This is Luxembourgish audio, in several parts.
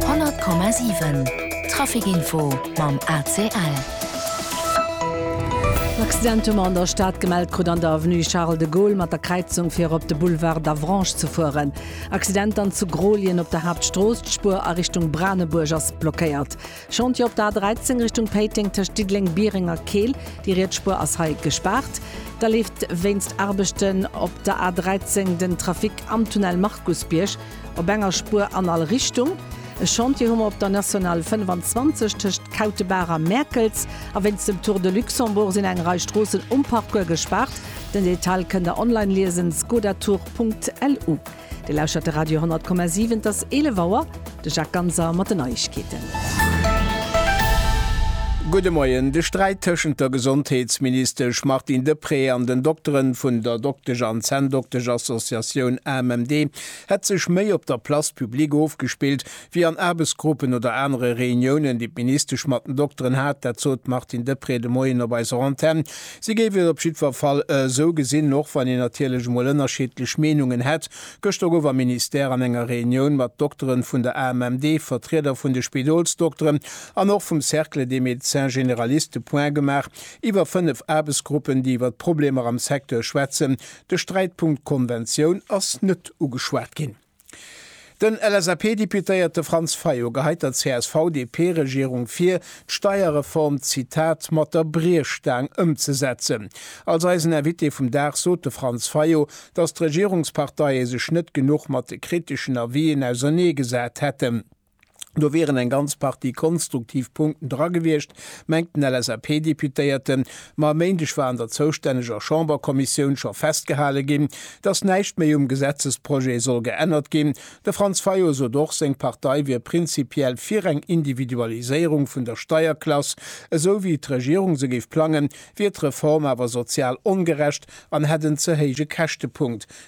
100,7 Trafic Info mam ACL. En Accident hu mer an der Stad gemellt krut an der Avenue Charles de Gaulle mat der Kräizung fir erop de Boulevard d'Avranches ze fueren. Accident dann zu Grolien op der Haaptstrooss, d'Spuer a Richtung Branebuerg ass blockéiert. Chantier op der A13 Richtung Péiteng tëscht Diddeleng, Biereng a Keel, déi riets Spuer ass hei gespaart. Da leeft wéinst Aarbechten op der A13 den Trafic am Tunnel Markusbierg. Op enger Spuer an all Richtung. E Chantier hu mer op der Nationale 25 tëscht Kautebaach a Mäerkels. A wéinst dem Tour de Luxembourg sinn eng Rei Stroossen um Parcours gespaart. Den Detail kënnt der online liesen, skodatour.lu. Dir lauschtert de Radio 10,7, et ass 11 Auer. De Jacques Ganser mat den Neiegkeeten. Gudde Moien. De Sträit tëschent der Gesondheetsministesch Martine Deprez an den Dokteren vun der Doktesch an Zänndoktesch Associatioun AMMD hätt sech méi op der Place publique ofgespillt, wéi an Aarbechtsgruppen oder anere Reuniounen, déi d'Ministesch mat den Dokteren hat. Dat sot d'Martine Deprez de Moien op eiser Antenn. Si géif et op jiddwer Fall esou gesinn, och wann een natierlech emol ënnerscheedlech Meenungen hätt. Gëschter gouf am Ministère an enger Reunioun mat Dokteren vun der AMMD, Vertrieder vun de Spidolsdokteren an och vum Cercle des médecins généralistes de points gemaach iwwer fënnef Aarbechtsgruppen, déi iwwer d'Problemer am Secteur schwätzen, De Sträitpunkt Konventioun ass net ugeschwat ginn. Den LSAP-Deputéierte Franz Fayot geheit der CSV-DP-Regierung vir, d'Steierreform, Zitat, mat der Briechstaang ëmzesetzen. Als eisen Invité vum Dag sot de Franz Fayot, datt d'Regierungsparteie sech net genuch mat de kriteschen Avisen ausernee gesat hätten. Do wieren eng ganz Partie konstruktiv Punkten dra gewiescht, mengt den LSAP-Deputéierten. Ma e Méindeg war an der zoustänneger Chamberkommissioun scho festgehale ginn, datt näischt méi um Gesetzesprojet soll geännert ginn. De Franz Fayot sot och, seng Partei wier prinzipiell fir eng Individualiséierung vun der Steierklass. Esou wéi d'Regierung se géif plangen, wier d'Reform awer sozial ongerecht an hätt en ze héije Käschtepunkt.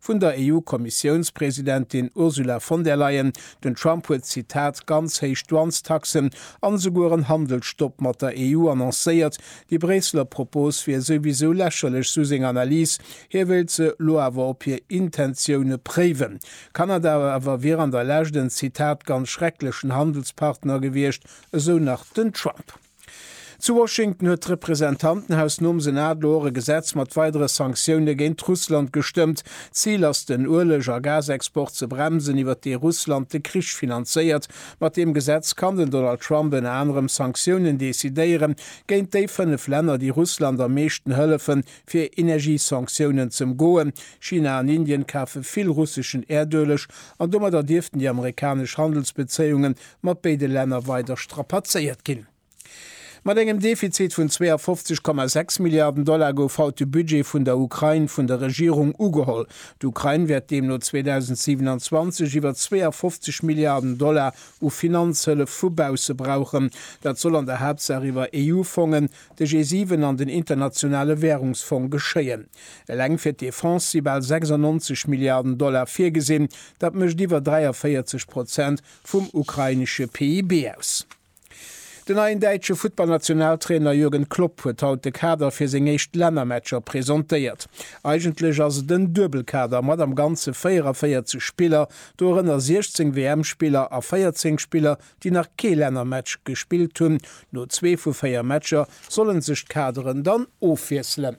Vun der EU-Kommissiounspresidentin Ursula von der Leyen, Den Trump huet, Zitat, ganz héich Douanestaxen an esouguer en Handelsstopp mat der EU annoncéiert. Déi Bréisseler Propos wier souwisou lächerlech, sou seng Analys. Hie wéilt se elo awer op hir Intentioune préiwen. Kanada awer wier an der Lescht en, Zitat, ganz schrecklechen Handelspartner gewiescht, esou nach den Trump. Zu Washington huet d'Representantenhaus nom Senat elo och e Gesetz mat weidere Sanktioune géint Russland gestëmmt. D'Zil ass den Ueleg a Gasexport ze bremsen, iwwert dee Russland de Krich finanzéiert. Mat deem Gesetz kann den Donald Trump ënner anerem Sanktiounen decidéiere géint déi fënnef Länner, déi Russland am meeschten hëllefen, fir Energiesanktiounen ze ëmgoen. China an Indien kafe vill russeschen Äerdueleg an domadder dierften déi amerikanesch Handelsbezéiunge mat béide Länner weider strapazéiert ginn. Mat engem Defizit vun 52,6 Milliarden Dollar gouf haut de Budget vun der Ukrain vun der Regierung ugeholl. D'Ukrain wäert deemno 2027 iwwer 52 Milliarden Dollar u Finanzhëllef vu bausse brauchen. Dat soll an der Haaptsaach iwwer EU-Fongen, de G7 an den Internationale Wärungsfong geschéien. Eleng fir d'Defense si bal 96 Milliarden Dollar virgesinn, dat mécht iwwer 43 Prozent vum ukrainesche PIB aus. Den neien däitsche Futtballnationaltrainer Jürgen Klopp huet haut de Kader fir seng éischt Lännermatcher presentéiert. Eigentlech ass et en Duebelkader mat am Ganze 44 Spiller, dorënner 16 WM-Spiller a 14 Spiller, déi nach kee Lännermatch gespillt hunn. No zwee vu véier Matcher solle sech d'Kaderen dann ofwiesselen.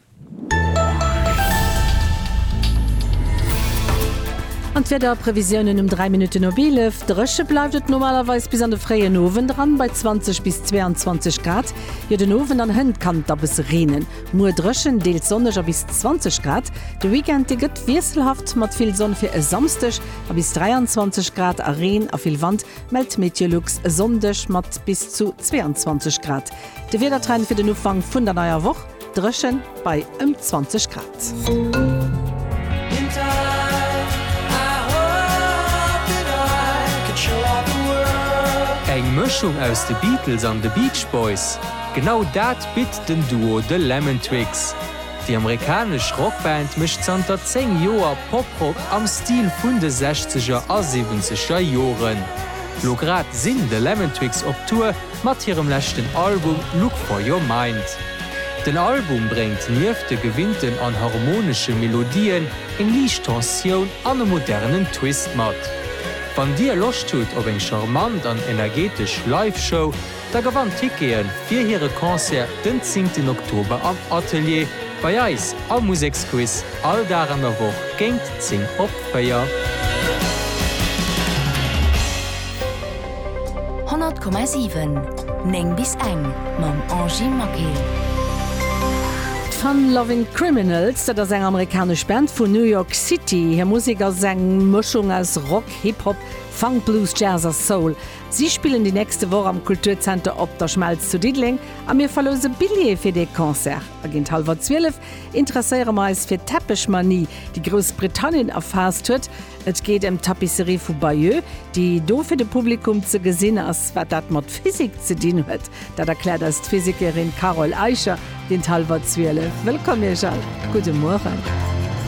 An d'Wiederprevisiounen um 3 Minutten op 11, Dréche bleift et normalerweis bis an de fréien Owend eran bei 20 bis 22 Grad. Jo, den Owend an hënt kann et da bësse reenen. Muer dréchen, deels sonneg a bis 20 Grad. De Weekend, dee gëtt wiesselhaft mat vill Sonn fir e Samsdeg a bis 23 Grad a Reen a vill Wand, mellt d'Meteolux e Sonndeg mat bis zu 22 Grad. De Wiedertrend fir den Ufank vun der neier Woch. Dréchen bei ëm 20 Grad. Eng Mëschung aus de Beatles an de Beach Boys? Genau dat bitt den Duo The Lemon Twigs. Déi amerikanesch Rockband mécht zanter 10 Joer Poprock am Stil vun de Sechzeger a Siwwenzeger Joren. Lo grad sinn The Lemon Twigs op Tour. mat hirem leschten Album Look For Your Mind. Den Album bréngt nieft de gewinnten an harmonesche Melodien eng liicht Tensioun an e modernen Twist mat. Wann dir Loscht hutt op eng charmant an energetesch Live-Show, da gewannt Tickete fir hire Concert den zéngten Oktober am Atelier bei eis am Museksquiz all Dag an der Woch géint 10 op 4. 100,7 9 bis eng mam Angy Maquet. D'Fun Lovin' Criminals, dat ass eng amerikanesch Band vun New York City. Hir Musek ass eng Mëschung aus Rock, Hip Hop, Funk, Blues, Jazz a Soul. Si spillen déi nächste Woch am Kulturzenter Op der Schmelz zu Diddeleng a mir verlouse Billjeeë fir dee Concert. A géint hallwer 12 interesséiere mer eis fir d'Tepechmanie, déi Groussbritannien erfaasst huet. Et geet ëm d'Tapisserie vu Bayeux, déi do fir de Publikum ze gesinn ass. Wat dat mat Physik ze dinn huet, dat erkläert eis d'Physikerin Carole Eicher géint hallwer zwielef. Wëllkomm Iech all, gudde Mueren.